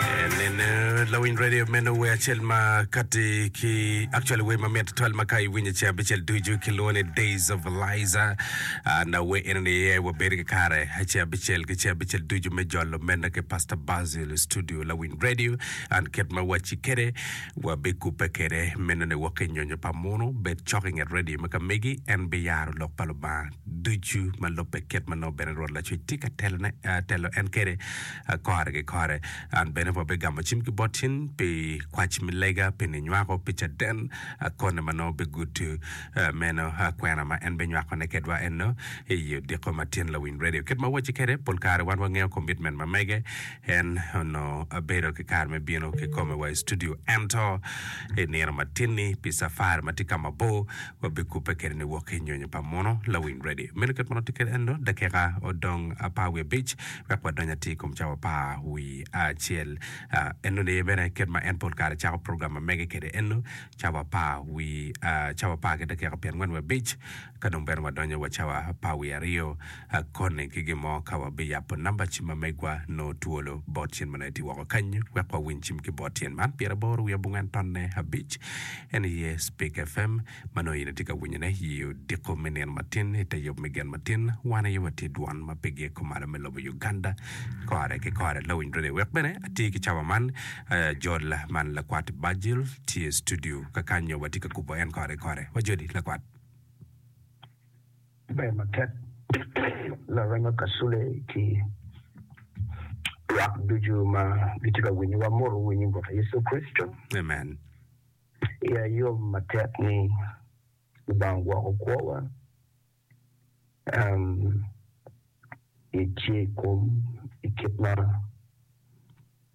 Nen lawiny radio meno wer acel ma kati ki actually wer mamit tutwal ma ka iwinyo ce abicel ducu kilwongo ni Days of Eliza Ah, na wer eno ni iye wabedo ki kare ce abicel ki ce abicel ducu me jolo meno ki Pastor Basil i studio lawiny radio and kit ma wacci kede wabikubbe kede meno ni wok ki nyonyo pa munu bed cok i nget radio me ka megi en biyaro lok pa Lubanga ducu ma lubbe kit ma nongo bene Rwot Lacwec tye ka telone ah, telo en kede kore ki kore. An bene pe abigamo cim ki bot cen pi kwac me lega pi ni nywako pi caden koni ma nongo bigudo meno kwena ma en binywakone kedwa eno i i odiko ma tyen lawiny radio. Kit ma awacci kede, pol kare wan wangeyo komitmen ma mege, en onongo bedo ki kare me bino ki kome wa i studio ento i nino matin-ni pi cafari ma tye ka mabor Wabikubbe kede ni wok ki nyonyo pa muno. Lawiny ready. Meno kit ma nongo tye kede eno, dakika odong apar wiye abic wek wadony atir i kom cawa pa wii acel. Eno ni bene kit ma en pol kare cako program ma mege kede eno, cawa pa wii, cawa apar ki dakika pyen angwen wiye abic, ka dong bene wadonyo wa cawa pa wii aryo. Akoni ki gin mo ka wabiyabo namba cim ma megwa nongo twolo bot cen ma nongo etye woko kany wek wawiny cim ki bot cen man pyera boro wiye abongwen tonne abic en aye Speak FM ma nongo in itye ka winyone i odiko me nino matin i te yub me gen matin wan aye watye dwon ma pe giye kumalo me lobo Uganda kore ki kore lawiny radio wek bene atye ki cawa man ajol man lakwat Bajil tye studio kakanyo watye ka kubo en kore ki kore wajoli lakwat. Ber matek larengo kasule ki lwak ducu ma gitye ka winyo wa moto winyo bot Yecu Kricito. Amen. Iya yom matek ni Lubanga ogwoko kwowa um etye i kom i kit ma.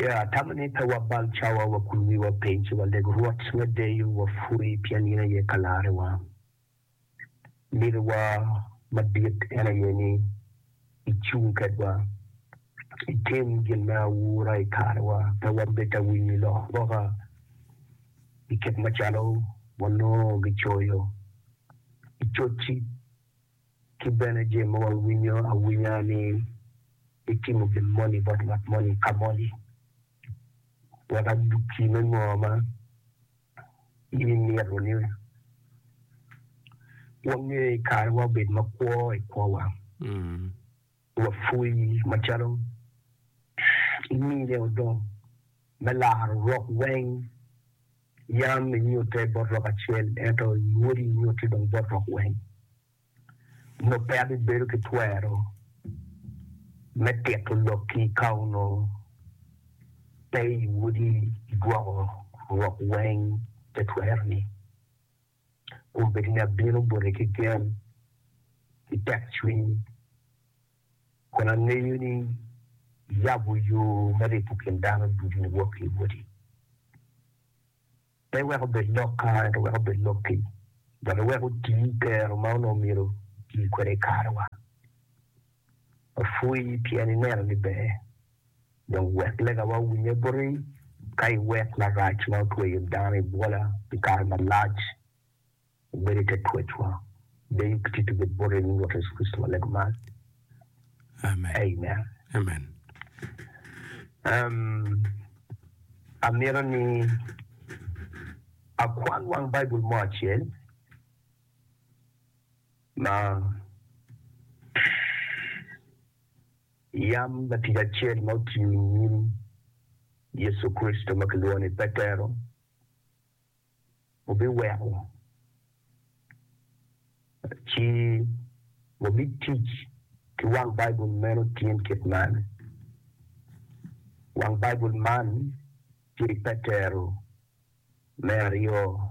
Ye atamo ni pe wabal cawa, wakul wiwa piny, ci waleg Rwot me deyo, wapwoye, pien in aye Kalarewa. Niniwa madit en aye ni icung kedwa, itim gin me aura i karewa, pe wabed awinyo lok boka i kit macalo wanongo gicoyo i cocci. Ki bene jami ma wawinyo awinya ni itimo gin moni bot ngat moni ka moni, wek adukki me ngo ma in imito ni wange i kare ma wabed makwo i kwowa. Wapwony macalo imine odong me laro rok weng yam inyute bot rok acel ento i wodi inyute dong bot rok weng. Onongo peya bibedo ki twero me tito lokki ka onongo pe i wodi igwoko rok weng te twero ni. Wun bed ni abino bote ki gen ki tekcwiny, kun angeyo ni iyabo yo me ripo kin dano ducu niwok ki i woti, pe wek obed lokka, ento wek obed lokki, dok iwek oti i kero ma onongo myero oti kwede i karewa. Wapwony pien ineno ni ber, dong wek legawa owinye buti, ka iwek marac ma otweyo dano i bwola pi kare malac obed i te twecwa. Deyo ki tito bed boti inying Rwot Yecu Kricito ma lego man. Amen. Amito ni akwan wang Baibul mo acel. Ma yam latic acel ma otiyo i nyim Yecu Kricito ma kilwongo ni Petero wubiweko, ci wabitic ki wang Baibul meno tin kit man. Wang Baibul man tye i Petero me aryo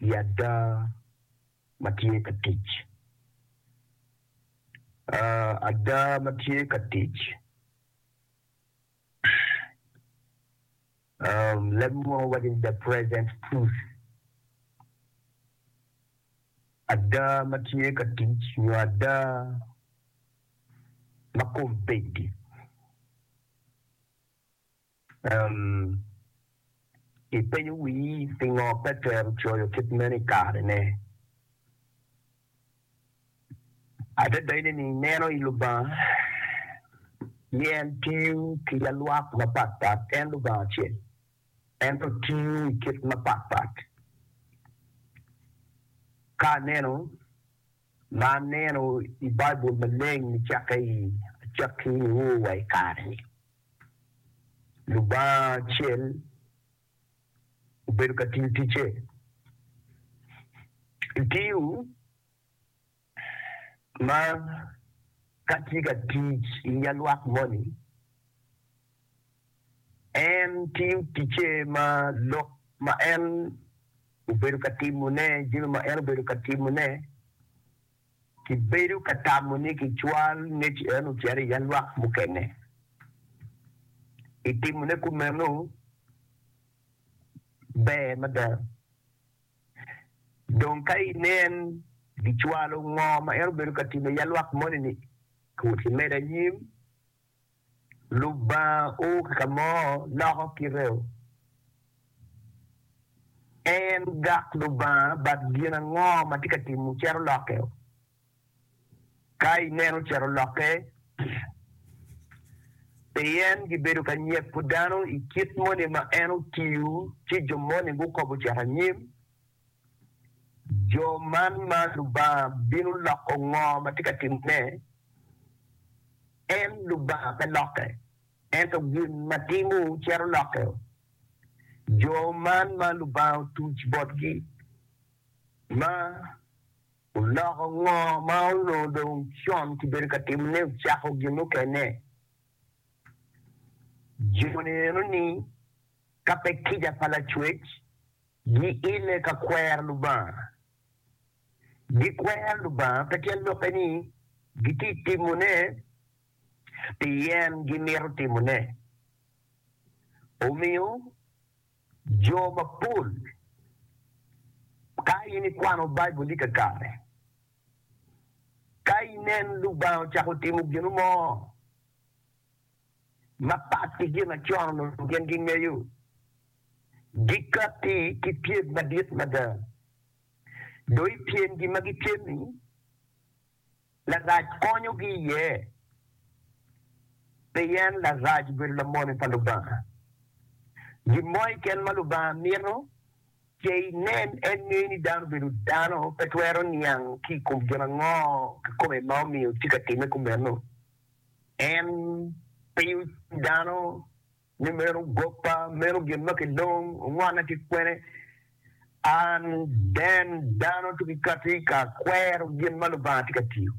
i ada ma tye ka tic. Ada ma tye ka tic, leb munu waco ni the present truth. Ada ma tye ka tic nyo ada ma kombeddi. Pien ipenyo wii pingo Petero coyo kit meno i karene? Adada in ni ineno i Lubanga ni en tiyo ki alwak mapat pat, en Lubanga acel, ento tiyo i kit mapat pat. Ka aneno ma aneno i Baibul maleng nicakke i acakki-niwu wa i kare-ni. Lubanga acel obedo ka tiyo ticce i tii-wu ma ka tye ka tic i nyalwak moni En tiyo ticce ma lok ma en obedo ka timone, jami ma en obedo ka timone. Kibedo ka tamo ni kicwal ngec en ocito i yalwak mukene. I timone kumeno, ber mada. Dong ka inen gicwalo ngo ma en obedo ka timo i yalwak moni-ni, kut imede anyim. Lubanga o ki ka mo loko kiteo. En gak Lubanga but gin ango ma tye ka timo cito lokke o. Ka ineno cito lokke, pien gibedo ka nyeko dano i kit moni ma en otiyo ci jo moni gukobo cito anyim, Jo man ma Lubanga bino loko ngo ma tye ka timone? En Lubanga pe lokke, ento gin ma timo cito lokke. Jo man ma Lubanga otuc botgi ma oloko ngo ma onongo dong con kibedo ka timone ocako gin mukene. Joni enoni ka pe kica pa Lacwec. Giile ka kwero Lubanga. Gikwero Lubanga pe tyen lokke ni gitye ka timone pien gimito timone. Omiyo, jo mapol, ka in ikwano Baibul-li kakare, ka inen Lubanga ocako timo gino mo, Mapat ki gin ma co-nu onongo gin gingeyo, gikatti ki pyem madit mada. Dong i pyemgi ma gipyem-mi, Larac konyogi iye, pien Larac obedo lamoni pa Lubanga. Gin mo keken ma Lubanga mito ce inen en ngeyo ni dano obedo dano pe twero niang ki i kom gin ango kikome ma omiyo tye ka timme kumeno. En penyo dano ni meno goppa, meno gin ma kilong, ongwanna ki kwene? An den dano to kikati ka akwero gin ma Lubanga tye ka tiyo.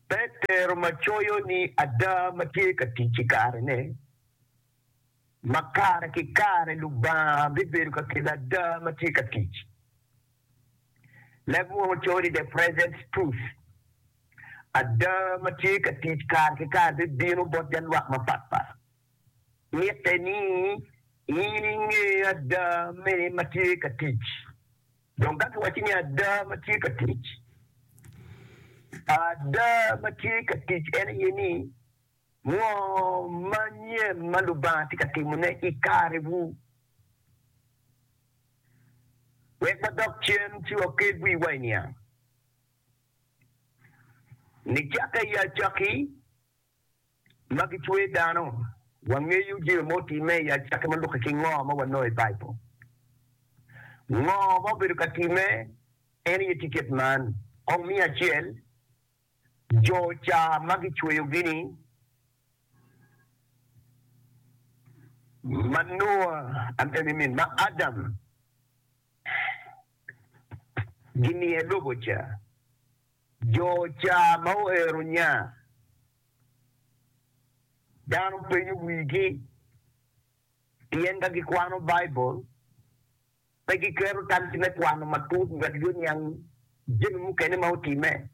Petero ma coyo ni ada ma tye ka tic i kare ne, ma kare ki kare Lubanga bibedo ka kelo ada ma tye ka tic. Leb woko coyo ni The Present Truth, Ada ma tye ka tic kare ki kare bibino bot ja lwak mapatpat. Mitte ni in inge ada me ma tye ka tic. Dong ka kiwacci ni ada ma tye ka tic, ada ma tye ka tic en aye ni ngo manyen ma Lubanga tye ka timone i karewu. Wek wadok cen ci waked wiwa i niang. Nicakke i acakki ma gicwer dano, wangeyo jami ma otimme i acakki ma lukke ki ngo ma wanongo i Baibul. Ngo ma obedo ka timme? En aye tiket man. Kong miya acel Jo ca ma gicweyogi-ni ma Nua, I mean ma Adam giniye lobo ca, jo ca ma oero nya, dano penyo wigi pien ka gikwano Baibul. Pe giketo tamgi me kwano matut ngat yo niang jami mukene ma otimme.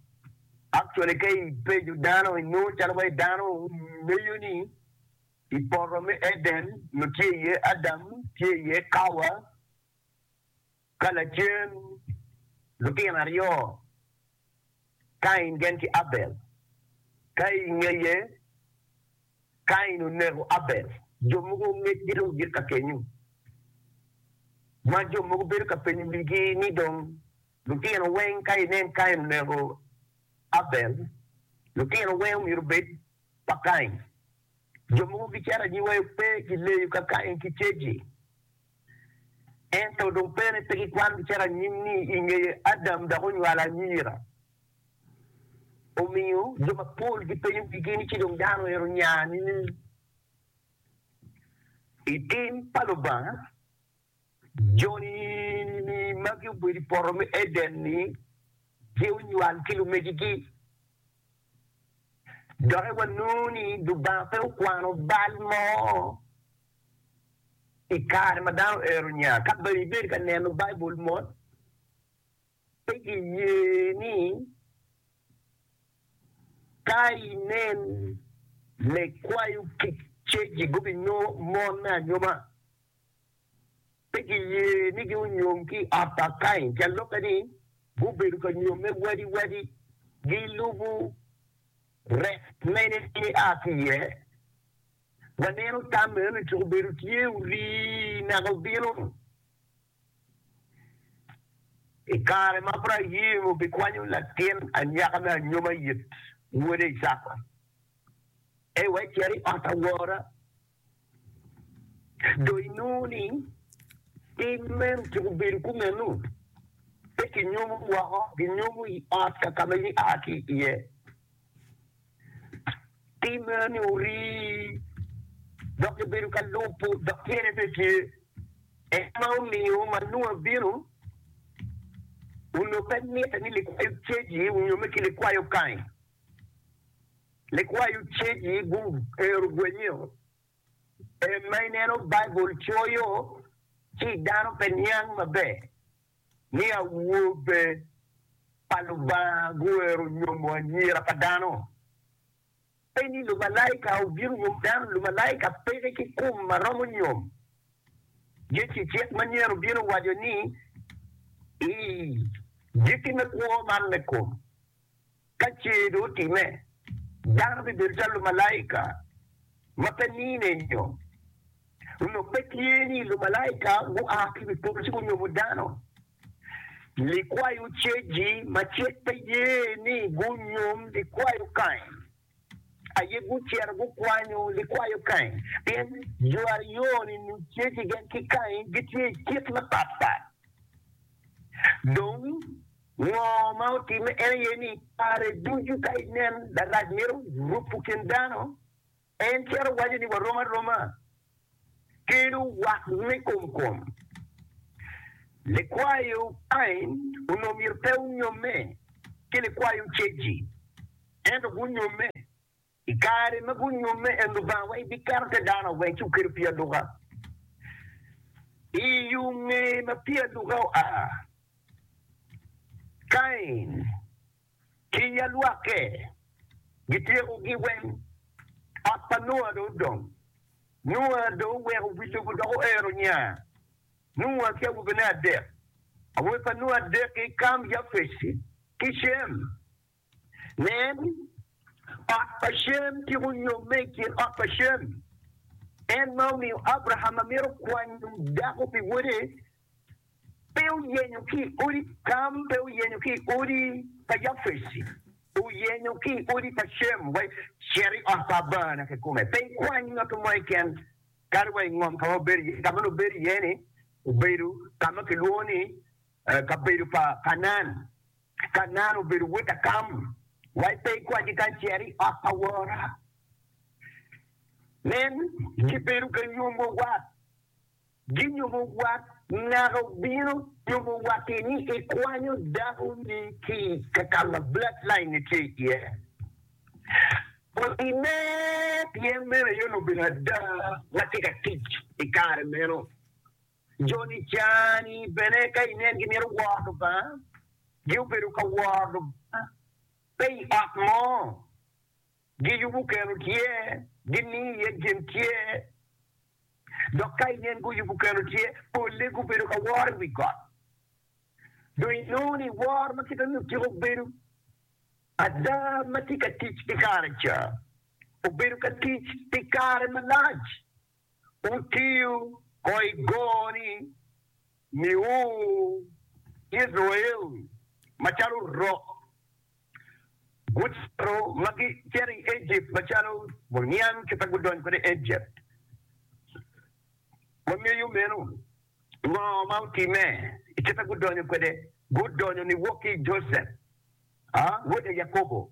Actually ka i pejo dano i nongo calo wai dano meyo ni i poto me Eden nyo tye iye Adam, tye iye Kawa, ka lacen lutino aryo Kain gen ki Abel. Ka i ngeye Kain oneko Abel, jo mogo ongecgi dong gik ka kenyu, ma jo mogo bedo ka penyo wigi ni dong lutino weng ka inen Kain oneko Abel, lutino weng omyero obed pa Kain? Jo mogo gicito anyiwa yo pe gileyo ka Kain ki Ceji. Ento dong pene pe gikwangi calo anyim ni i ngeye Adam dok onywalo anyira. Omiyo, jo mapol gipenyo wigi ni ci dong dano ero onya nining? I tim pa Lubanga, joni ma gubedo i poto me Eden-ni gitye onywal ki lumegigi. Doki wanongo ni Lubanga pe okwano bal mo I kare ma dano ero nya, ka dong ibedo ka neno Baibul mot, pe giye ni ka inen lekwayo kic cegi gubinyomo mon me anyoma. Pe giye ni gunyom ki i ot pa Kain, pien lok aye ni gubedo ka nyomme wadiwadi, gilubo rek mene ma aa ki iye. Waneno tam meno-ni tuk obedo tye orii naka obino i kare ma Abraim obikwanyo latin anyaka me anyoma it wode Icaka ei wek cer i ot awora. Dong inongo ni tim meno tuk obedo kumeno, pe kinyomo woko, ginyomo i ot ka ma in ia ki iye. timme ni orii dok gibedo ka lubo dok tyene pe tye. En ma omiyo ma Nua bino, onongo pe mitte ni likwayo caji nyo me ki likwayo kany. Likwayo caji guhero gwenyeo. En ma ineno Baibul coyo ci dano pe niang maber. ni awobe pa Lubanga guwero nyomo anyira pa dano? Pe ni lumalaika obino nyomo dano. Lumalaika peke ki kum ma romo nyom. Yecu i cik manyen obino waco ni, I giki me kwo man me kom, Ka ce dong otimme, dano bibedo calo lumalaika ma pe nine nyo lok. Pe tye ni lumalaika gua ki i wi polo ci gunyomo dano. Likwayo Cegi macek pe ye ni gunyom likwayo Kain. aye gucito gukwanyo likwayo Kain, pien jo aryo-ni nongo tye ki gen ki Kain, gitye i kit mapatpat. Dong, ngo ma otimme? En aye ni, kare ducu ka inen larac mito rupo kin dano, en cito waco ni, Warom aroma. kelo wat me kom kom. Likwayo pain onongo myero pe gunyomme ki likwayo ceggi, ento gunyomme. I kare ma gunyomme en Lubanga wai biketo te dano awe ci wukelo pii aluka. I yo nge ma pii aluka oa, Kain. ki ya lwakke, gityeko gi weng. Ot pa Nua dong odong. Nua dong oweko wi lobo dok oero nya. Nua ki awobene adek, awobe pa Nua adek-ki, Kam, Japec ki Cem. Nen, ot pa Cem tyeko nyomme i kin ot pa Cem, en ma omiyo Abraham ma mito kwanyo dako pi wode, pe oyenyo ki i odi Kam, pe oyenyo ki i odi pa Yafeci, oyenyo ki i odi pa Cem, wa i cito i ot pa Abana kikome, pe ikwany ngat mo keken, kadi wa i ngom ka ma wubedo iye, ka ma lubedo iye-ni obedo ka ma kilwongo ni kabedo pa Kanaan, Kanaan obedo wod a Kam, wa pe ikwany keken, cit i ot pa wora, nen, gibedo ka nyomwa wat. Ginyumo wat naka obino nyumo watti ni ikwanyo dako ni ki ka kama blood line ne tye iye. Kodi me pien meno aye onongo obedo ada ma tye ka tic i kare meno. Jo ni ca ni bene ka inen gi mito woro Lubanga, gi obedo ka woro Lubanga pe i ot mo. Giyubu keno tye, gini iye gin tye, dok ka yen guyubu keno tye, polle gubedo ka woro i wi got. Dong inongo ni woro ma kite ni otyeko bedo ada ma tye ka tic i kare ca, obedo ka tic pi kare malac. Wutiyo ko i goni miu Icrael macalo rok, gucito ma gicito i Ejipt macalo muniang kit ma gudonyo kwede i Ejipt. Wangeyo meno. Ngo ma otimme i kit ma gudonyo kwede? Gudonyo niwok ki i Josep, wode Yakobo.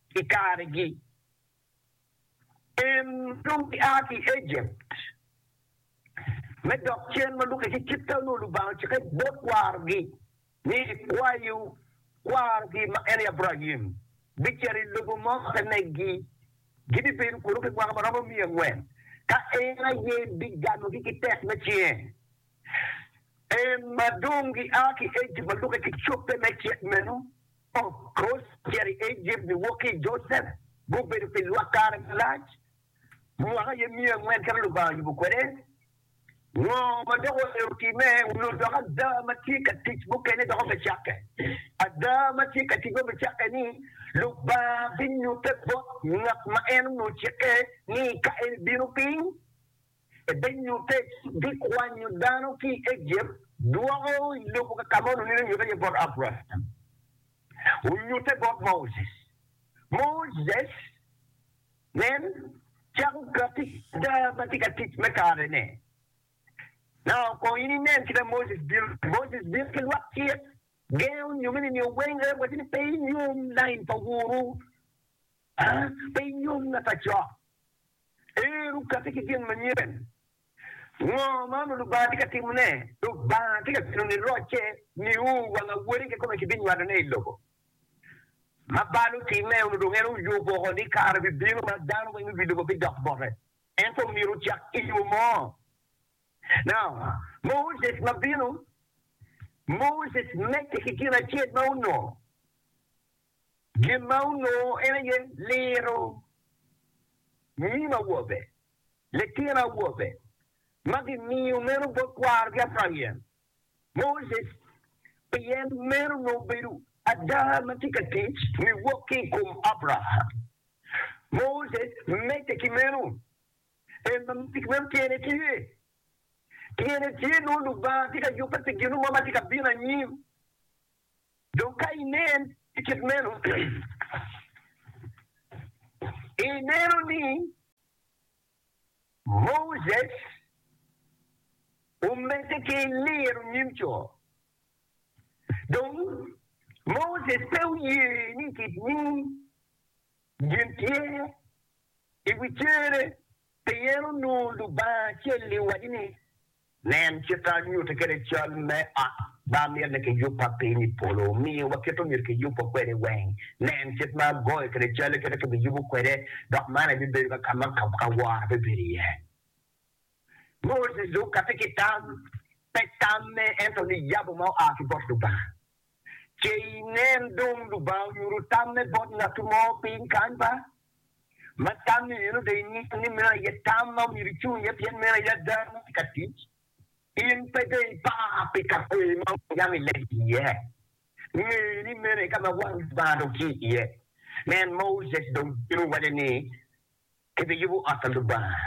I karegi, en dong gia ki i Ejipt me dok cen ma lukke ki kit ka nongo Lubanga ocikke bot kwarogi ni, Kwayo kwarogi ma en aye Abraim bicito i lobo mo ma pe neggi, gibibedo kunu pi mwaka ma romo miya angwen, ka en aye biganogi ki tek me cinge En ma dong gia ki Ejipt ma lube ki cobbe me cik meno, ocito i Ejipt niwok ki i Josep, gubedo pi lwak kare malac, mwaka aye miya angwen kit ma Lubanga oyubo kwede. Ngo ma dok oero timme? Onongo dok ada ma tye ka tic mukene dok obicakke. Ada ma tye ka tic ma obicakke ni, Lubanga binyutte bot ngat ma en onongo cikke ni ka en ebino piny, Ebinyutte ci bikwanyo dano ki i Ejipt dwoko i lobo ka ka ma onongo nino nyutte iye bot Abraim. Onyutte bot Moses. Moses, nen, cako katti ada ma tye ka tic me karene. Naka kong in inen kit ma Moses bino ni, Moses bino ki lwak cik, gengo onyomeni nio weng, en wacci ni, Pe inyom lain pa wunu, aa, pe inyom ngat acok. Ero okati ki gin manyen. Ngo ma onongo Lubanga tye ka timone? Lubanga tye ka bino ni rocce niu wang awori kikome kibinywalone i lobo. Ma bal otimme, onongo dong en oyubo woko ni kare bibino ma dano weng i wi lobo bidok bote. Ento myero ocak ki yo mo. Now, Moses ma bino, Moses medde ki gin acel ma onongo. Gin ma onongo en aye liro nyim awobe, litino awobe ma gimiyo meno bot kwarogi Abraim, Moses, pien meno onongo bedo ada ma tye ka tic niwok ki i kom Abraham. Moses medde ki meno, en ma medde ki meno tyene tye, tyene tye nongo Lubanga tye ka yubbe pi gin mo ma tye ka bino anyim. Dong ka inen i kit meno, ineno ni Moses omedde ki liro nyim co. Dong, Moses pe oye ni kit nyim gin tye i wi cere Pien onongo Lubanga ocelli owaco ni, Nen kit ma anyutti kwede cal me ot ma amito ni kiyubba piny i polo, omiyo wakit omyero kiyubwa kwede weng. Nen kit ma agoyo kwede cal, kit ma kibiyubo kwede, dok man aye bibedo ka ka ma awora bibedo iye. Moses dong okatti ki tam, pe tamme, ento niyabo ma oa ki bot Lubanga. Ce inen dong Lubanga onyuto tamme bot ngatu mo piny kany ba? Ma tammi meno dong inyuto ni meno aye tam ma myero icung iye pien meno aye ada ma tye ka tic. In pe dong ipar pi ka kweyo ma Miriam ilego iye. Nge ni meno aye ka ma wang Lubanga dong tye iye. Nen, Moses dong bino waco ni, Kibiyubo ot pa Lubanga.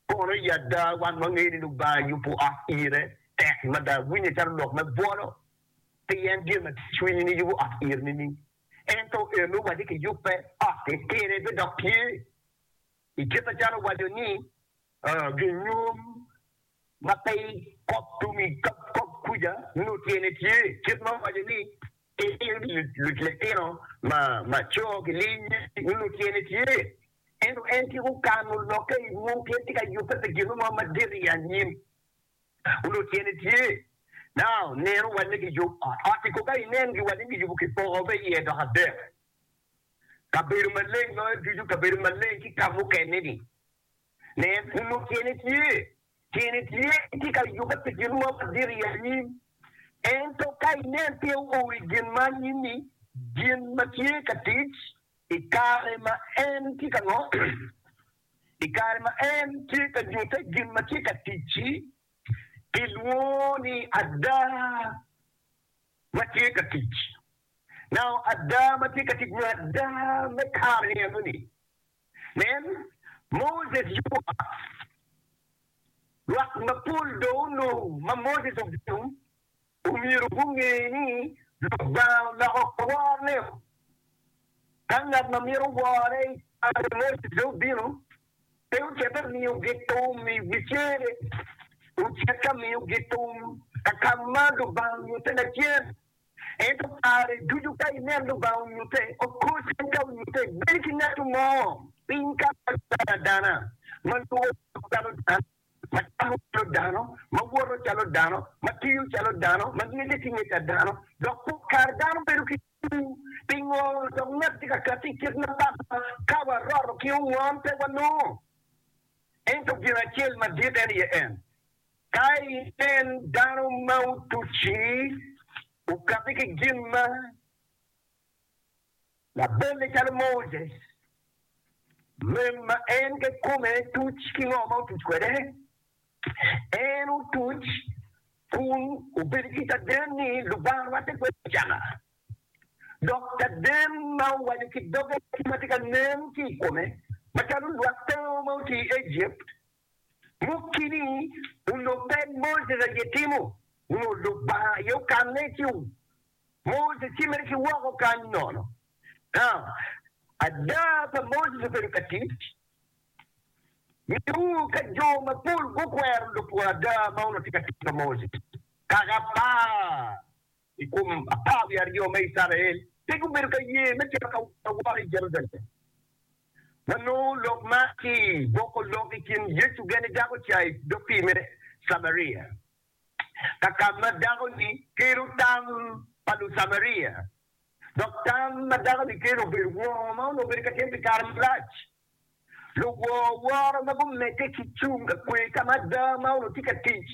Kono i ada wan wangeyo ni Lubanga yubo ot ire tek mada. Winye calo lok me bwolo pien gin ma tye i cwinyi ni yubo ot iri nining? Ento eno wacce kiyubbe ot-ti pire bidok tye i kit macalo owaco ni, Ginyom ma pe i kop tum i kop kuca nongo tyene tye kit ma owaco ni, Iniling litino ma co ki linyi nongo tyene tye Ento en tika okano lokke i mwom pien tye ka yubbe pi gin mo madit i anyim? Onongo tyene tye, Now, neno wanne giyub ot. Ot-ti kong ka inen giwanne giyubo ki poko me iye dok adek, kabedo maleng loyo ducu, kabedo maleng ki ka mukene-ni. Nen, onongo tyene tye, Tyene tye, en tye ka yubbe pi gin mo madit i anyim. Ento ka inen pe oo i gin ma anyim-mi, gin ma tye ka tic I kare ma en tye ka ngo? I kare ma en tye ka nyutte gin ma tye ka tic-ci, kilwongo ni ada ma tye ka tic. Nao ada ma tye ka tic nyo ada me kare-ni enoni. Nen, Moses yubo ot. Lwak mapol dong onongo ma Moses ogedo omyero gunge ni Lubanga oloko worreo. Ka ngat ma mito worre i kare mo ci pe obino, pe ocito miyogi thum i wi cere, ocit ka miyogi thum ka ka ma Lubanga onyutte lacen. Ento kare ducu ka inen Lubanga onyutte oko cen ka onyutte bed ki ngat mo piny ka ma calo adana ma lworo calo dano. ma camo calo dano, ma woto calo dano, ma tiyo calo dano, ma ngecce ki ngec a dano, dok pol kare dano bedo ki cwiny. Pingo dok ngat tye ka kati i kit ma batwa? Ka waroto ki ongon, pe wanongo. Ento gin acel madit en aye en, ka inen dano ma otuc-ci, okabi ki gin ma. Labonge calo Moses, rem ma en kekome tuc ki ngo ma otuc kwede? En otuc kun obedo ki caden ni Lubanga rwatte kwede i caka, dok caden ma owaco ki doge ki ma tye ka nen ki i kome macalo lwak tango ma otye i Ejipt Mukini onongo pe Moses aye timo nyo Lubanga aye okanne ci Moses ecimere ki woko kany nono. Ada pa Moses obedo ka tic nyo ka jo mapol gukwero lupwony ada ma onongo tye ka tic pa Moses kaka par I kom apar wiye aryo me Icrael pe gubedo ka ye me cito ka woro i Jerucalem. Wanongo lok man ki i boko lok i kin Yecu gene dako ca i dog pii me Camaria, ka ka ma dako-ni kelo tam pa Lucamaria, dok tam ma dako-ni kelo obedo wongo ma onongo obedo ka tim pi kare malac. Luwor woro ma gumedde ki cung ka kwe ka ma ada ma onongo tye ka tic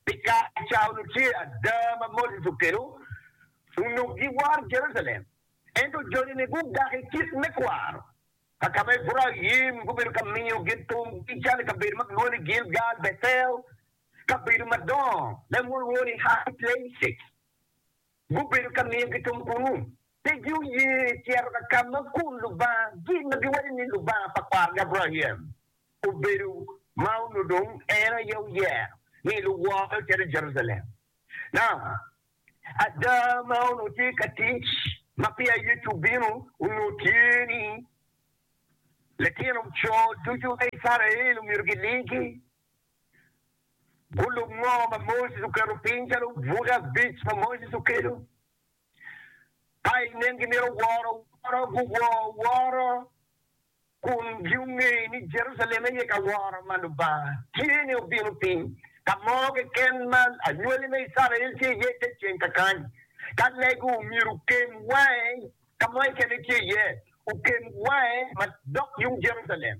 pi kare ca onongo tye ada ma Moses okelo onongo giworo Jerucalem. Ento joni-ni gugak i kit me kwaro ka ka ma Ebraim gubedo ka miyo gin thumgi calo i kabedo ma gilwongo ni Gilgal, Bethel, kabedo madongo ma gilwongo ni High Places. Gubedo ka miyo gitum kunnu. Pe gioye cito ka ka ma kun lubanga gi ma giwaco ni Lubanga pa kwargi Abraim obedo, ma onongo dong en aye oyero ni luwore ocit i Jerucalem. Na, ada ma onongo tye ka tic ma peya Yecu obino onongo tye ni, litino co ducu me Icrael omyero gilingi. Gulub mo ma Moses oketo piny calo buke abic ma Moses okelo, ka inen gimito woro woro, guwor woro kun gunge ni Jerucalem aye ka woro ma Lubanga tye ni obino piny. Ka mo keken ma anywali me Icrael tye iye te ceng kakany. Ka lego omyero okem wange ka mo keken ice iye, okem wange madok yung Jerucalem.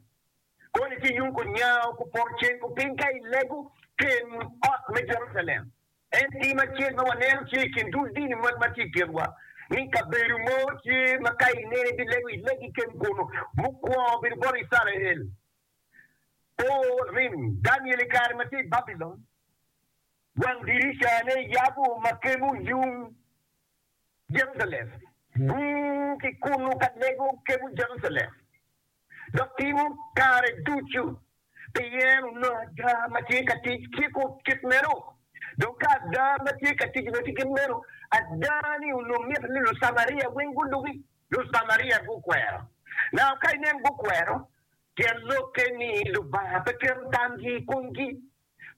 Gonye ki yung kunyawo ku poto ceng ku piny ka i lego ken ot me Jerucalem. En tim acel ma waneno tye i kin dul dini moni ma tye i kinwa ni kabedo mo tye ma ka ineno ibilego i legi ken kunu. Mukwongo obedo bot Icrael. O, rim! Daniel i kare ma tye i Babilon, wang dirica ne yabo ma kemo yung Jerucalem. Gung ki kunu ka lego kemo Jerucalem. dok timo kare ducu pi yen onongo ada ma tye ka tic ki kut kit meno. Dong ka ada ma tye ka tic onongo tye kit meno, ada ni onongo mito ni Lucamaria weng gulubi. Lucamaria gukwero. Naka ka inen gukwero, tyen lokke ni Lubanga pe keto tamgi i komgi.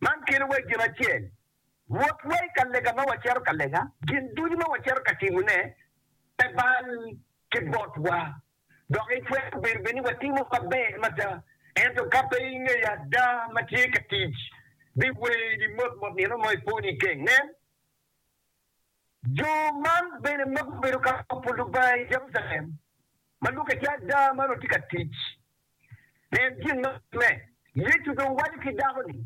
Man kelowa i gin acel, Wotwa i ka lega ma wacito ka lega, gin ducu ma wacito ka timone pe bal ki botwa. Dok itwero bedo bene ni watimo maber mada, ento ka pe ingeyo ada ma tye ka tic, biweri motmot nino mo ipwo niken. Nen, jo man bene ma gubedo ka kopo Lubanga i Jerucalem, ma lwaki aye ada ma onongo tye ka tic. Nen gin ma otimme, Yecu dong waco ki dako-ni.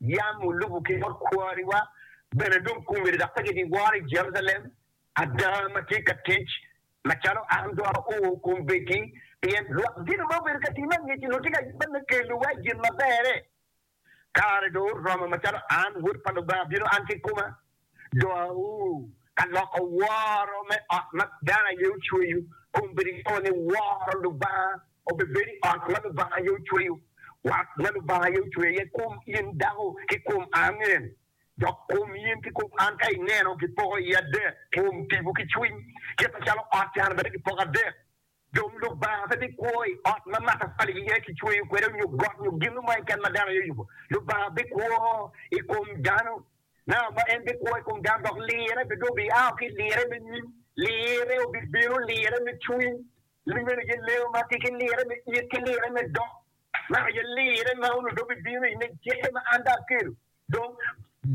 Yam olubo ki bot kwariwa bene dong kume dok pe gibiworo i Jerucalem ada ma tye ka tic macalo an dong ao kombeddi, pien lwak gin ma obedo ka tima angec onongo tye ka yubba me kelowa i gin maberre. Kare dong oromo macalo an, Wod pa Lubanga, bino an kikoma Dowu ka loko woro me ot ma dano aye ocweyo, kun bed ingeyo ni woro Lubanga obibed i ot ma Lubanga aye ocweyo. Wat ma Lubanga aye ocweyo aye kom in dako ki kom an en, dok kom in ki kom an ka ineno gipoko iye adek, kom, tipo ki cwiny. Kit macalo ot can bene gipoko adek, Dong Lubanga pe bikwo i ot ma matafali iye kicweyo kwede nyo got nyo gin mo keken ma dano aye oyubo. Lubanga bikwo i kom dano nanga ma? En bikwo i kom dano dok lirre bene dong biaa ki i lirre me nyim. Lirre obibino, lirre me cwiny, lime-ni gileo ma tye ki lirre me it ki lirre me dok, Naka aye lirre ma onongo dong bibino i nge cik-ke ma an dong aketo. Dong,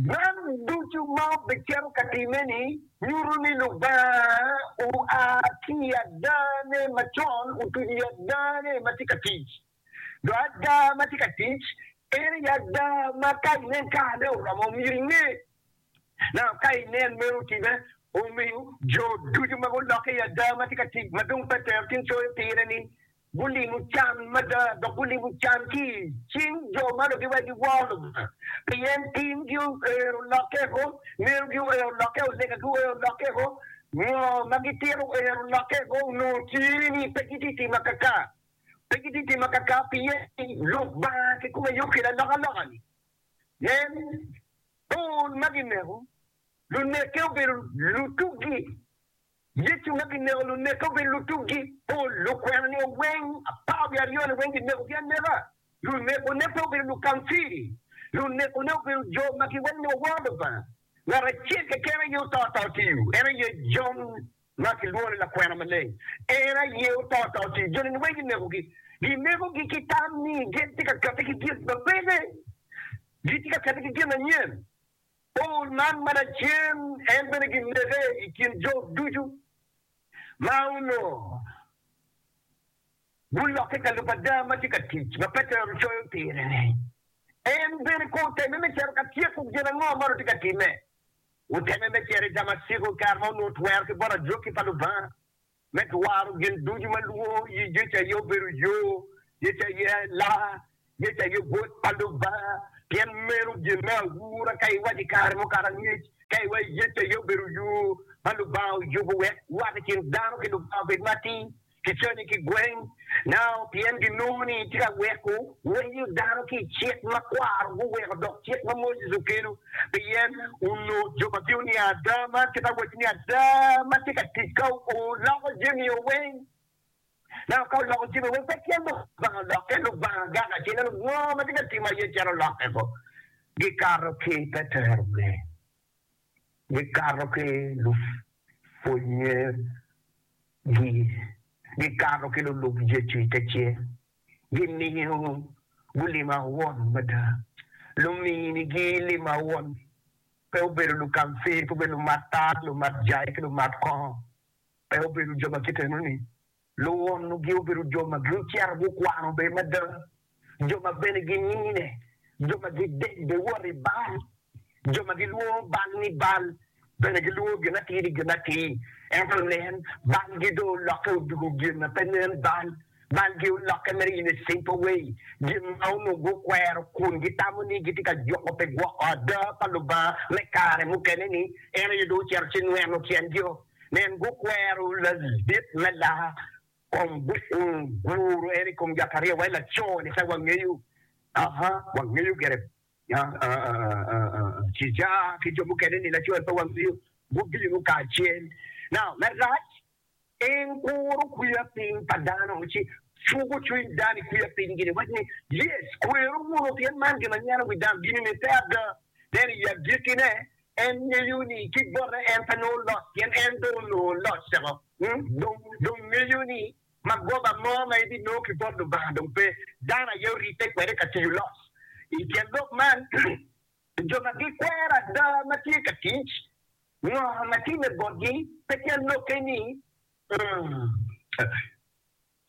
man ducu ma wubicito ka timme-ni nyuto ni Lubanga oa ki i adane macon otuco i adane ma tye ka tic. Dong ada ma tye ka tic, en aye ada ma ka inen karane oromo, myero inge. Naka ka inen meno otimme, omiyo jo ducu ma gulokke i ada ma tye ka tic ma dong pe tero tung coyo pire-ni Gulimo can mada dok gulimo can ki i cing jo ma lugiwa giwor Lubanga, pien timgi oero lokke o, merogi oero lokke o, legagi oero lokke o, ngo ma gitito oero lokke o, onongo tye ni pe gitye timo akaka, pe gitye timo akaka pien ni Lubanga kikome yub kede alokaloka-ni. Nen, pol ma gineko lunekke obedo lutuggi. Yecu ma gineko luneke obedo lutuggi. Pol lukwena nio weng apar wiye aryo-ni weng ginekogi aneka. Lunekone pe obedo lukamfiri. Lunekone obedo jo ma giwaco ni waworo Lubanga. Ngat acel keken aye oto ata otiyo, en aye Jon ma kilwongo ni lakwena maleng. En aye oto ata otiyo. Jo-ni weng ginekogi. Ginekogi ki tam ni gin tye ka kette ki gin ma peke, gitye ka kette ki gin anyen. Paul man ma lacen en bene ginege i kin jo ducu ma onongo gulokke ka lub ada ma tye ka tic ma Petero coyo pire-ni. En bene kono otemme me cito ka tyeko gin ango ma onongo tye ka timme? Otemme me cito i Damaciko i kare ma onongo twero ki bot ajwaki pa Lubanga. me twaro gin ducu ma lwo yi Yecu aye obedo yo, Yecu aye laa, Yecu aye Bot pa Lubanga. Pien meno gin me aura ka iwaco i kare mukato angec, ka iwaco Yecu aye obedo yo ma Lubanga oyubo wek wat i kin dano ki Lubanga obed matir, ki canyi ki gweng, Nao pien ginongo ni itye ka weko wenyo dano ki i cik ma kwaro guweko dok cik ma Moses okelo, pien onongo jo ma gio ni ada, man kit awaco ni ada ma tye ka tic ka oloko jami o weng. Nao ka oloko jami o weng pe tye mogo Lubanga olok, ento Lubanga gak acel ento ngo ma tye ka timme aye calo lokke bo. Gikato ki Petero me gikato ki lupwonye Gi. Gikato ki lulub Yecu i te cel, gimiyo gulima won mada. Lumini gi lima won pe obedo lukamfir, pe obedo lumat tal, lumat jai, ki lumat kongo. Pe obedo jo ma kite enoni. Luwonnu gi obedo jo ma gicito gukwano bene mada. jo ma bene ginine, jo ma gidec bene wot i Baal, jo ma gilwongo Baal ni Baal bene gilwongo gin atir ni gin atir. Ento nen, Baalgi dong olokke odoko gin ma pe nen bal, balgi olokke mere in ecimple way gin ma onongo gukwero kun gitamo ni gitye ka juko pi gwoko ada pa Lubanga me kare mukene ni, en aye dong ocito ci nweno tyen-gio. Nen, gukwero ladit me laa. Kong guru en i kom Jakaria wai laco-ni ka wangeyo, aa, wangeyo gire Cija ki jo mukene ni laco-ni pe wangeyo, gubino kacel. Now, marac, en kuro kwiya piny pa dano ci cuko cwiny dano i kwiya pinygi ni waci ni, Yes, kweru wunu, pien man gin ma nyeno wi dano gin-ni ni pe ada. Nen, i agikkine, En ngeyo ni ki bote en pe nongo loc, pien en dong onongo loc ceko. Dong, dong ngeyo ni magoba mo ma ebinongo ki bot Lubanga dong pe. Dano aye oribbe kwede ka tiyo loc. I tyen lok man, jo ma gikwero ada ma tye ka tic, ngo ma timme botgi? Pe tyen lokke ni,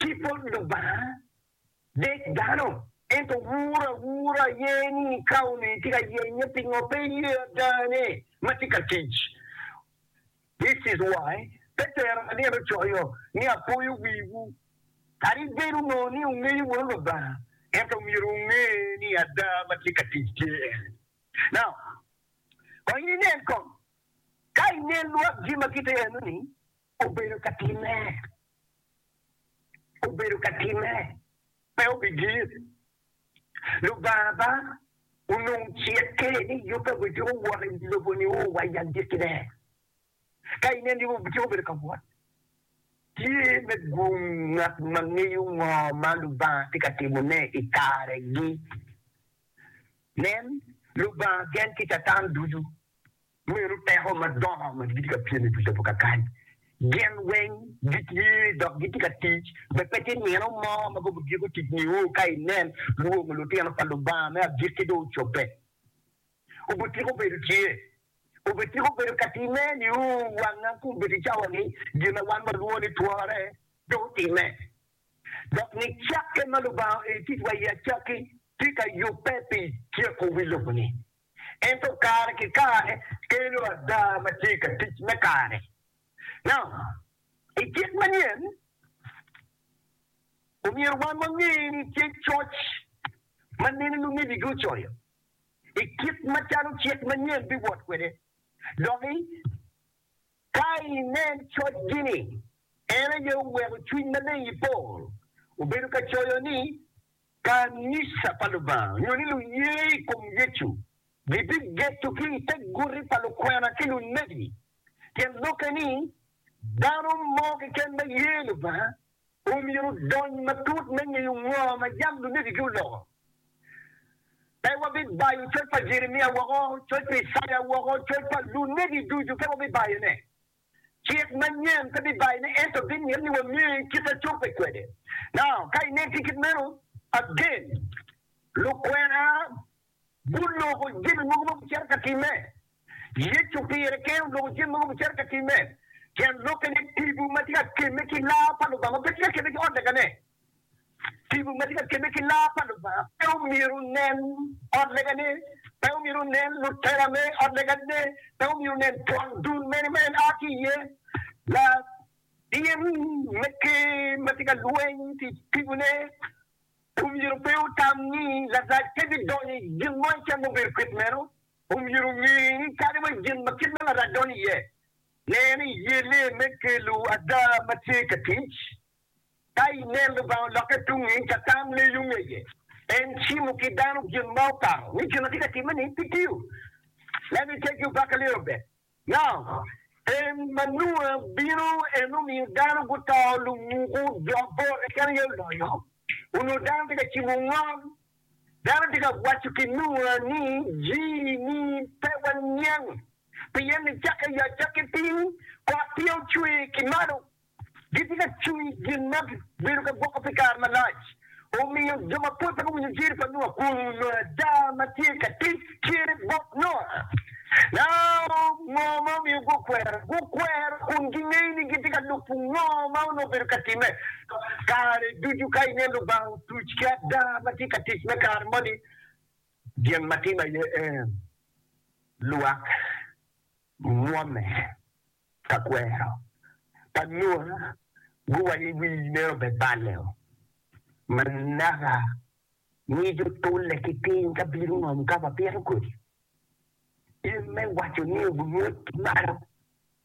Ki bot Lubanga, dek dano, ento wur awura aye ni ka onongo itye ka yenye pingo pe iye ada ne ma tye ka tic. This is why Petero alyel ocoyo ni apoyo wiwu, kadi bed onongo ni wungeyo bot Lubanga, ento myero wunge ni ada ma tye ka tic tye en. Now, kong in inen kong, ka inen lwak jami ma kite eno ni, Obedo ka timme. Obedo ka timme. Pe obigir. Lubanga ba onongo cikke ni yubbe obed ciko wot i lobo-ni o wa i agikki-ne. Ka ineno yubbe obiciko obedo ka wot, tye me gung ngat ma ngeyo ngo ma Lubanga tye ka timone i kare-gi. Nen, Lubanga gen ki Catan ducu. Meno peko madongo ma gitye ka pyem i wi lobo kakany. Gin weng gitye dok gitye ka tic, be pe tye nino mo ma gubigiko tic nio ka inen lwongo lutino pa Lubanga me agikki dong ocobbe. Obityeko bedo tye, obityeko bedo ka timme nio wanga kun bedi cawa ni gin ma wan walwongo ni twore dong otimme, dok ni cakke ma Lubanga oero ticwa iye acakki tye ka yubbe pi tyeko wi lobo-ni. ento kare ki kare kelo ada ma tye ka tic me kare. Now, i kit manyen, omyero wan wange ni tye coc ma nene lumegigi ocoyo i kit macalo cik manyen biwot kwede. Doki, ka inen cocgi-ni, en aye oweko Cwiny Maleng i pol obedo ka coyo ni Kanica pa Lubanga nyo ni luye i kom Yecu gibigeto ki i te guti pa lukwena ki lunebi. Tyen lokke ni, dano mo keken ma ye Lubanga omyero odony matut me ngeyo ngo ma yam lunebigi oloko. Pe wabibayo coc pa Jeremia woko, coc pa Icaya woko, coc pa lunebi ducu pe wabibayone. Cik manyen pe bibayone ento bimyero ni wange kit a cobbe kwede. Now, ka inen tye kit meno, again, lukwena guloko jami mogo ma gucito ka timme. Yecu pire kene oloko jami mogo gucito ka timme. Tyen lokke ni, tipo ma tye ka kemme ki laa pa Lubanga pe tye ka kemme ki ot lagane. Tipo ma tye ka kebbe ki laa pa Lubanga pe omyero onen ot legane, pe omyero onen lutela me ot legane, pe omyero onen twon dul mene ma en a ki iye. Latin me ker ma tye ka lweny ki i tipone omyero pe otam ni Larac pe bidonyo i gin mo icen ma obedo kit meno. Omyero onge ni kadi wa gin ma kit meno Larac donyo iye, nen iye lee me kelo ada ma tye ka tic. Ka i neno Lubanga olokke tungngi, Catan leyo ngeye. En cimo ki dano gin ma okato ni gin ma tye ka timme ni pi tiyo. Leb i teggi obaka leyo obed. Now, en ma Nua bino en omiyo dano guto lumuku jo abor keken aye oloyo. Onongo dano tye ka cimo ngom. Dano tye ka waco ki Nua ni jii ni pe waniang pien nicakke yo acakki piny kot tye ocwer ki malo. Gitye ka cwiny gin ma gibedo ka gwoko pi kare malac. Omiyo, jo mapol pe guwinyo jer pa Nua kun onongo ada ma tye ka tic cente bot Nua. Nao ngo ma omiyo gukwero? Gukwero kun gingeyo ni gitye ka lubo ngo ma onongo obedo ka timme. Kare ducu ka ineno Lubanga otuc ki ada ma tye ka tic me kare moni, gin ma timme aye en lwak mwomme. Ka kwero pa Nua guwayo i wi meno bene balle-o, ma naka ngec otule ki piny ka bino ngom ka wapito kodi. In me waco ni owungut ki malo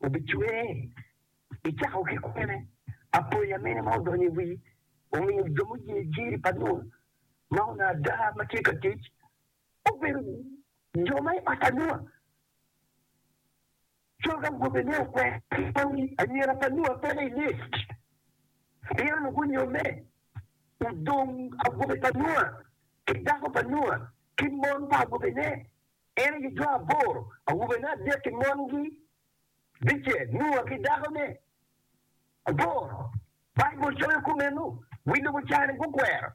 obicwer, icako ki kwene? Apoya mene ma odonyo i wii omiyo jo muye jiri pa Nua ma onongo ada ma tye ka tic obedo jo ma i ot pa Nua? Cok awobe ne okwero jami anyira pa Nua pene i list pien ogunyomme. Odong awobe pa Nua, ki dako pa Nua, ki mon pa awobene, en aye jo aboro, awobene adek ki mongi bicel, Nua ki dakone aboro. Baibul coyo kumeno, wi lobo ca-ni gukwero,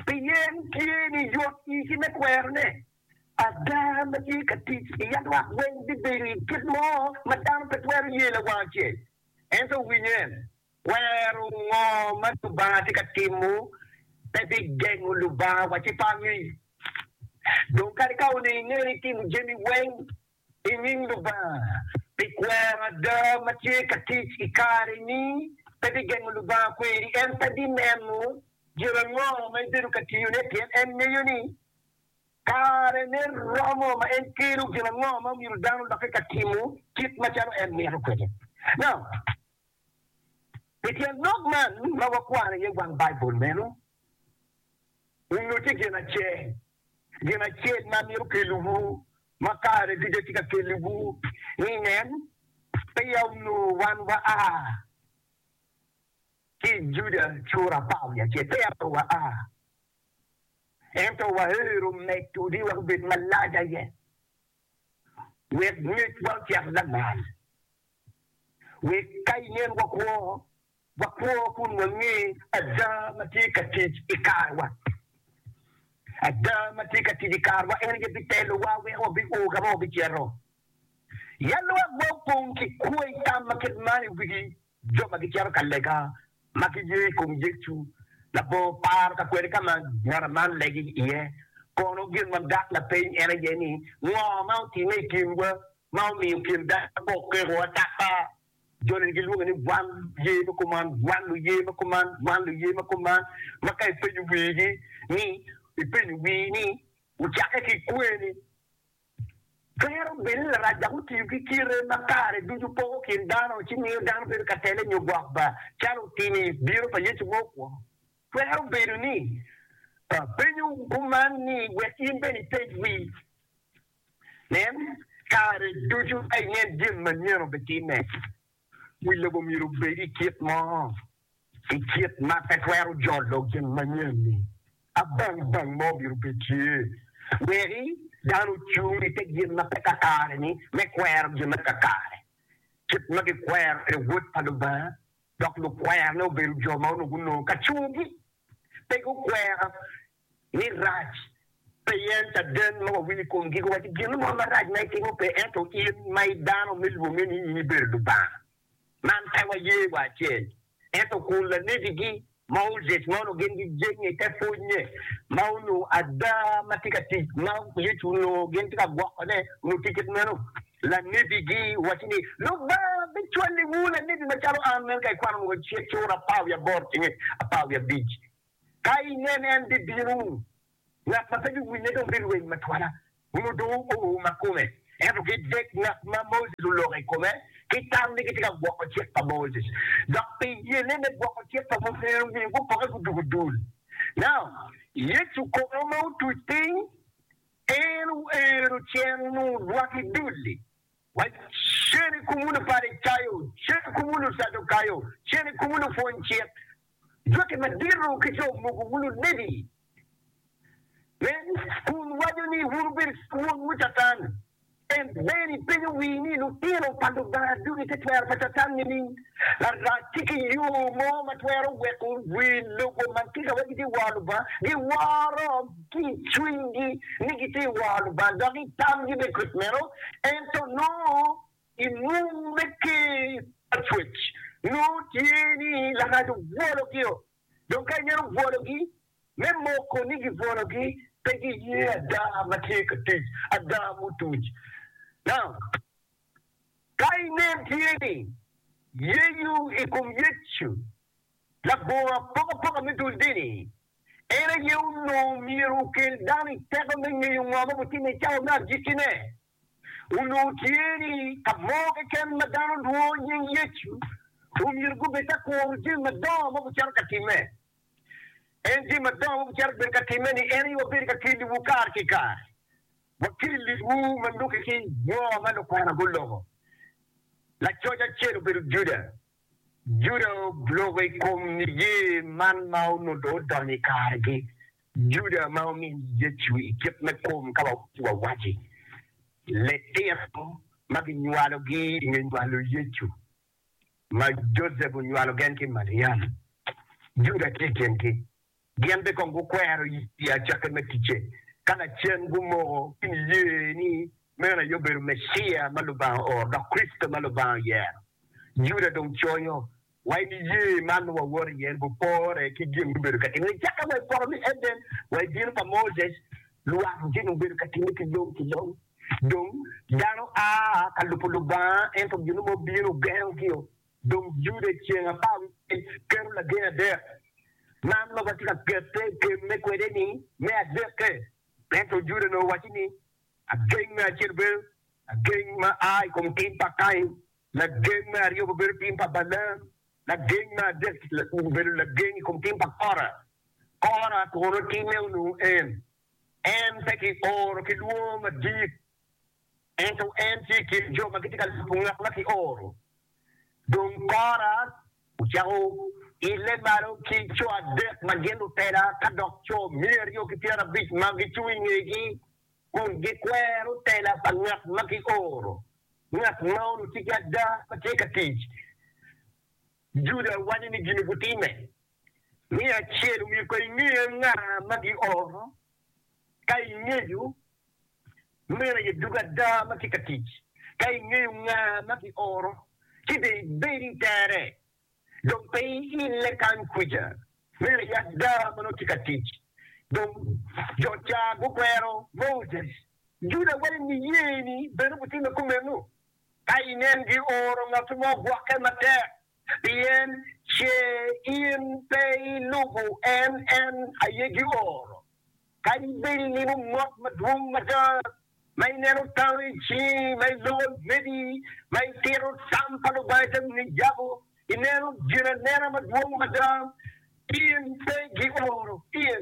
pien tye ni yot igi me kwerone. Ada, ma tye ka tic i yat lwak weng bibedo i kit mo ma dano pe twero ye lawang acel. Ento winy en, Kwero ngo ma Lubanga tye ka timo pe bigengo Lubanga wa ci pangi? Dong kadi ka olingo ingeri itimo jami weng i nying Lubanga pi kwero, ada ma tye ka tic i kare-ni pe bigengo Lubanga kweri. En pe bineno gin ango ma ibedo ka tiyone, pien en ngeyo ni Karene romo ma en kelo gin ango ma myero dano odokke ka timo kit macalo en mito kwede? Na. I tyen lok man ma wakwano iye wang Baibul meno, wunyuti gin acel, gin acel ma myero okelliwu ma kare ducu atye ka kelliwu ni, Nen, peya onongo wan waa ki i Juda cura apar wiye acel, peya pe waa. Ento waheru medodi wek obed malac aye, wek ngecwa ocak lamal, wek ka inen wakwo, wakwo kun wange ada ma tye ka tic i karewa. Ada ma tye ka tic i karewa en aye bitelowa wek wabio ka ma wabicito. Ya lwak ma opong ki kwo i tam ma kit man i wigi Jo ma gicito ka lega ma kiye i kom Yecu labongo paro ka kwede ka ma ngat man legi iye. Kono gin ma dok lapeny en aye ni, Ngo ma otimme i kinwa ma omiyo kin dano pe okeko ataka? Joni ni gilwonge ni wan luye me kuman, wan luye me kuman, wan luye me kuman, ma ka ipenyo wigi ni, ipenyo wii ni, Wucakke ki kweni? Twero bedo larac dok otiyo ki kite ma kare ducu poko kin dano ci miyo dano bedo ka tele nyo gwok ba, calo otimo i bino pa Yecu ma okwongo. Twero bedo ni apenyo kuman ni wek in bene ipej wi nen kare ducu ka inen jami manyen obitimme. Wi lobo myero obed i kit mo i kit ma pe twero jolo gin manyen-ni. Abang bang mo myero bed tye wek dano ocung i te gin ma pe kakare-ni me kwero gin ma kakare, kit ma gikwero kwede Wod pa Lubanga, dok lukwerone obedo jo ma onongo gunongo kacogi pe gukwero ni rac pe yen caden ma wawinyo i kom giko waci gin mo marac ma itimo pe ento in ma i dano me lwonge ni in ibedo Lubanga man pe waye wa acel ento kun lanebi gi Moses mono gin gi jenge te pwonye ma onongo ada ma tye ka tic ma Yecu onongo gin tye ka gwoko ne onongo tye kit meno lanebi gi waci ni Lubanga bi cwali wu lanebi ma calo an meno ka ikwano mogo cura apar wiye aboro cenge apar wiye abic Ka inen en bibino, ngat ma pe biwinye dong bilweny matwala, nyo dong oo ma kome. Ento ki dek ngat ma Moses oloko i kome ki tam ni gitye ka gwoko cik pa Moses, dok pi yene me gwoko cik pa Moses en omiyo gupoke gudugo dul. Naam. Yecu kono ma otuc piny, en oero cen onongo odwaki dul-li. Wacen i kumwu Luparicayo, cen i kumwu Lucadukayo, cen i kumwu lupwony cik, Cokke madito ki jo mogo wunu Levi me kun waco ni, 'Wun wubed wonwu Catan! En ber i penyo wii ni lutino pa Lubanga ducu gitye twero pa Catan nining? Larac ci ki yo mo ma twero weko wi lobo man tika wek gitye woro Lubanga, giworo ki i cwinygi ni gitye woro Lubanga dok i tamgi bene kit meno, ento nongo I mwom me Ker pa Cwec nongo tye ni Lakana obwologi-o, dong ka ineno obwologi me moko ni gibwologi, pe giye ada ma tye ka tic ada mutuc. Now, ka inen tye ni Yecu i kom Yecu labongo apokapoka me dul dini, en aye onongo myero okel dano i teko me ngeyo ngo ma obitimme i cawa me agikki-ne. onongo tye ni ka mo keken ma dano olwongo nying Yecu, omyero gubed ka kuro jami madongo ma gucito ka timme. En jami madongo ma gucito bedo ka timme ni en aye wabedo ka keliwu kare ki kare, wakelliwu ma lubbe ki jo ma lukwana guloko. Lacoc acel obedo Juda, Juda obloko i kom niye man ma onongo odonyo i karegi. Juda ma omin Yecu i kit me kom ka wawaci litino ma ginywalogi i nge nywalo Yecu ma Josep onywalo gen ki Maliam, Juda tye i kingi. Gin bene kong gukwero i acake me ticce ka lacen gumoko ki niye ni meno aye obedo Meciya ma Lubanga ooro, dok Kricito ma Lubanga oyero. Juda dong conyo wa i niye man ma wawoto iye ni gupore ki gin gubedo ka timme. Cakke wa i poto me Eden wa i diro pa Moses, lwak gin obedo ka timme ki long ki long. Dong dano a ka lubo Lubanga, ento gin mo bino ogengo gio. Dong Juda i ceng apar wicel keto lagen adek. Man lok atye ka kette i kemme kwede ni me adekke. Ento Juda onongo owaco ni, Ageng me acel obedo lageng ma a i kom tim pa Kain, lageng me aryo obedo tim pa Balaam, lageng me adek obedo lageng i kom tim pa Kora. Kora kono timme onongo en? En pe kioro ki lwongo madit. Ento en tye i kin jo ma gitye ka lubo ngat ma kioro. Dong Kora ocako ile malo ki co adek ma gin lutela ka dok co miya aryo ki pyerabic ma gicung i ngegi kun gikwero tela pa ngat ma kioro. Ngat ma onutye ki ada ma tye ka tic Juda wanyo ni gin-ni gutimme. Miya acel, omiyo ka ingeyo nga ma gioro, ka ingeyo Meno aye dog ada ma tye ka tic. Ka ingeyo nga ma kioro ci dong ibed i tere, dong pe iile kany kwica. Meno aye ada ma nongo tye ka tic. Dong jo ca gukwero Moses. Juda wai niyeni bene gutimme kumeno. Ka inen gioro ngatu mo gwoke matek pien ce in pe ilubo en, en aye gioro. Kadi bed inimo mot madwong mada, ma ineno tama i cingi, ma iloko lweti, ma itito tam pa Lubanga ite nge yabo, ineno ginanena madwong mada, in pe gioro iye,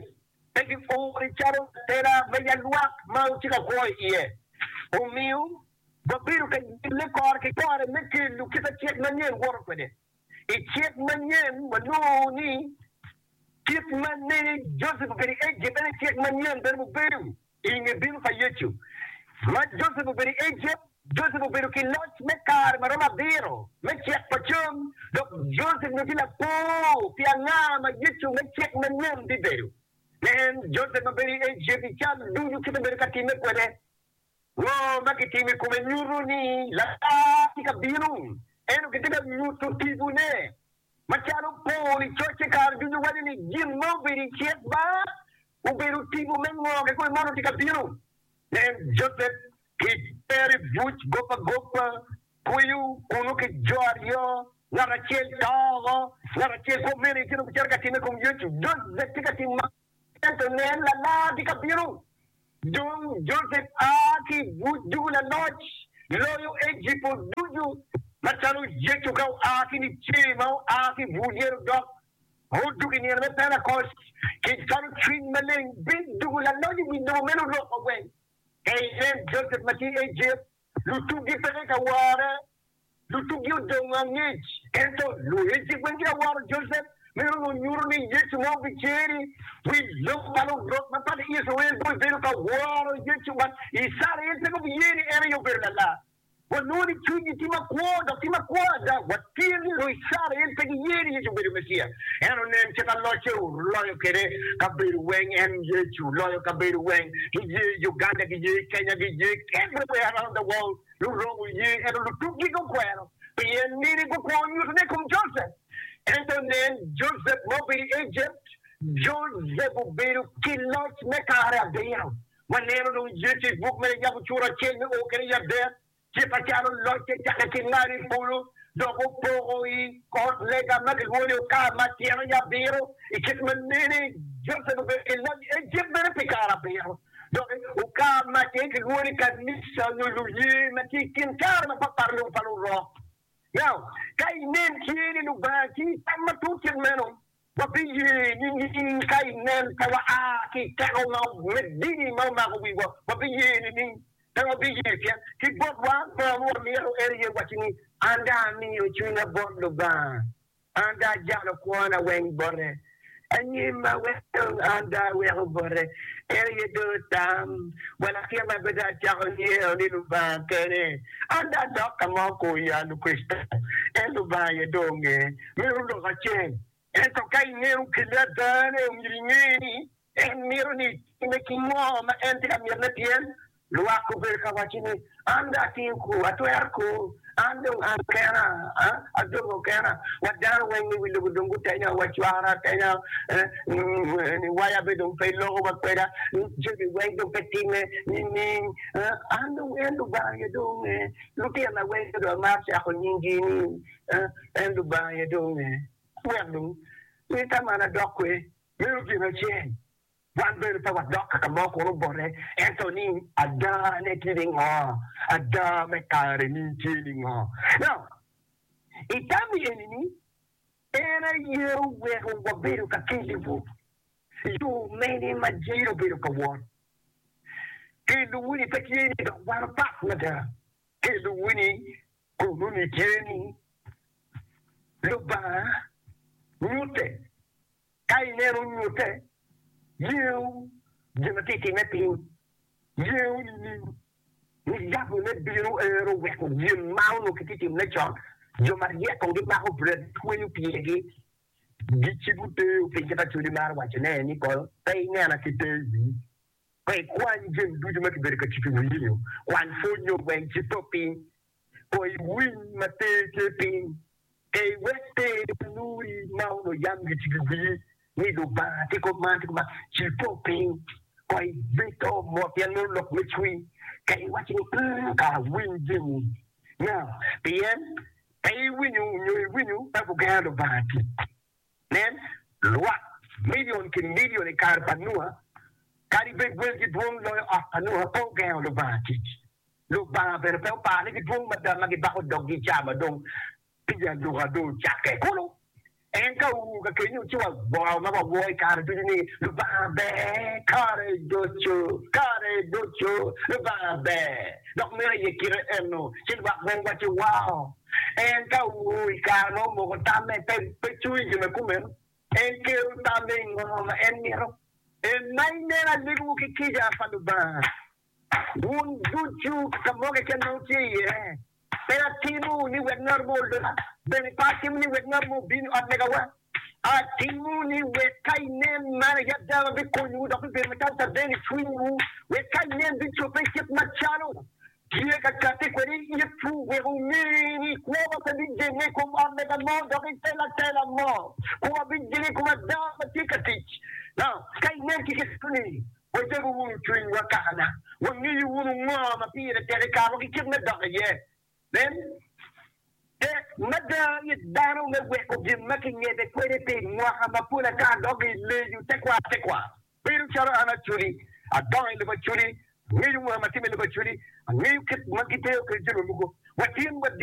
pe giori calo atera ma yat lwak ma otye ka kwo iye. Omiyo, wabedo ka nyille kore ki kore me kelo kit acik manyen woto kwede. I cik manyen wanongo ni kit ma ne Josep obedo i Ejipt en aye cik manyen bene mubedo i nge bino pa Yecu. Ma Josep obedo i Ejipt, Josep obedo ki loc me kare ma romo abiro me cik pa cam, dok Josep onongo tye lapor pi anga ma Yecu me cik manyen bibedo. Nen Josep ma bedo i Ejipt i cal ducu kit ma obedo ka timme kwede. Ngo ma kitimo i kome nyuto ni Lakar tye ka bino? Ento kitye ka nyuto tipone macalo opor i coc ki kare ducu, waco ni gin ma obedo i cik ba obedo tipo me ngo kikome ma onongo tye ka bino. Nen Josep ki Meri buc gob agoba, kweyo kunnu ki jo aryo, ngat acel to woko, ngat acel kwo mene itino bicito ka timme i kom Yecu. Josep tye ka timo. Ento nen, Lalar tye ka bino! Dong Josep a ki i buc ducu laloc, loyo Ejipo ducu, macalo Yecu ka oa ki Nicee ma oa ki i bur yen odok, ma odwogo i nino me Penakoc, ki cwalo Cwiny Maleng bit ducu. Laloc i wi lobo meno oloko gweng. Ka inen Josep ma tye i Ejipt, Lutugi peke ka ware. Lutugi odongo angec. Ento luhecci weng gitye ka waro Josep. Meno onongo nyuto ni Yecu ma obicer-ri, wi lok pa lurok mapat i Icrael dong obedo ka woro Yecu. Wat Icrael peke obiye ni en aye obedo lalar. Wanongo ni cwinygi tye makwo, dok tye makwo ada. Wat. Pien ni dong i cara en pe giye ni Yecu obedo Meciya, en onen cika locce oloyo kwede kabedo weng, en Yecu oloyo kabedo weng, giye i Uganda, giye i Kenya, giye everywhere around the world, Luromo oye, ento lutukgi gukwero pien nini gukwo nyutone i kom Joseph. Ento nen, Joseph ma obedo i Egypt, Joseph obedo ki loc me kare abiro. Waneno dong Yecu i buk me Yabo cura acel me o kwede i adek, Ci pacalo locce cakke ki malo i polo, dok opoko i kot lega ma kilwongo ni Okar ma tyene aye Abiro, i kit ma nene Josep obedo ki loc i Ejipt bene pi kare abiro. Doki, Okar ma tyene kilwongo ni Kanica nyo luye ma tye i kin kare mapatpat lobo pa Lurok. Now, ka inen tye ni Lubanga tye i tam matut kit meno, Wabiye nining ka i nen pe waa ki i teko me dini ma omako wiwa? Wabiye nining? Pe wabiye, pien ki botwa ngo ma wamyero en iye wacci ni, An dong amiyo cwinya bot Lubanga, an dong ajalo kwona weng bote, anyima weng an dong aweko bote, en aye dong otam wa latin ma pe dong acako ngeyo ni Lubanga kene, an dong adok ka ma okoya Lukricitayo, en Lubanga aye dong onge. myero olok acel. Ento ka ineno kelle ada ne omyero inge ni en mito ni itime ki ngo ma en tye ka mitine pien lwak gubedo ka waco ni an dong atye ku atwero ku an dong an kena adongo kena wa dano weng me wi lobo dong gutenya wa cwara atenya ni waya be dong pe loko wa kweda ni jami weng dong pe time nining an dong en lubanga aye dong onge lutina weng dong amaro cako nying gi ni En Lubanga aye dong nge. Wek dong mita man adok kwer bedo gin acel, wan bene pe wadok ka ka mo kun obote, ento ni adane tye ningo, ada me kare-ni tye ningo. Now, i tam eni-ni, en aye oweko wabedo ka keliwu yo mene ma jiri obedo ka wot. Kelowu-ni pe tye ni dok wan opat mada, kelowu-ni Kono nitye ni, Lubanga nyutte. Ka ineno nyutte, yewu gin ma tye ka timme piny. Yewu nining? Ni gabone bino ero weko gin ma onongo kitye ka timone con. Jo maryeko gimako bret, gitweyo pyergi, gicibo teyo piny kit ma Codi maro wacone-ni, Kono pe inena ki te i wii. Pe ikwany jami ducu ma kibedo ka titti wiyinyo, kwany pwony nyo gweng ci to piny. Kono iwiny ma ter tye piny, ka iwek pe inuri ma onongo yam gitigi wiyi ni Lubanga tye kop man tye kop man, ci to piny. Kono ibed to mot pien meno lok me cwiny, ka iwaco ni Ung, ka awiny jami na, pien ka iwinyo nyo iwinyo ka gugera Lubanga tic. Nen, lwak milion ki milion i kare pa Nua, kadi bed gwelgi dwong loyo ot pa Nua, pe ogengo Lubanga tic. Lubanga bene pe oparo ni gidwong mada ma gibako doggi i caa ma dong tic aluka dong ocakke kulu. En ka our kakeni-nu ci wagwoko ma wawo i kare ducu ni, Lubanga ber kare ducu, kare ducu Lubanga ber, dok mito iye kite ennu. Ci lwak bene wacci, Wao! En ka owor i kare ma omoko tamme, pe cung i jami kumeno. En kelo tamme i ngo ma en mito. En ma inen aleggiwu ki kica pa Lubanga, wun ducu ka mo keken ma wutye iye, pe atimo ni wek ngat mo oloka, bene pe atimo ni wek ngat mo obin i ot megawa. Atimo ni wek ka inen man aye ada ma bikonyowu dok bibedo macalo caden i cwinywu, wek ka inen bicobbe i kit macalo tye ka catte kwede i itwu, wek wunge ni kwowa pe bijenge i kom ot lega mo dok i te latela mo, kwowa bijenge i kom ada ma tye ka tic. Ka inen ki kit meno-ni, wajabu wunu cwinywa kakana, wangeyo wunu ngo ma pire tek i kare wa ki kit me dok iye. Nen, tek mada ni dano me weko gin ma kingete kwede pi mwaka mapol ata dok i leyo tekwaro tekwaro. Bedo calo an aculi, adongo i lobo aculi, angeyo mwaka ma atimo i lobo aculi, angeyo kit ma gideyo kwede jami mogo, watyen wadit.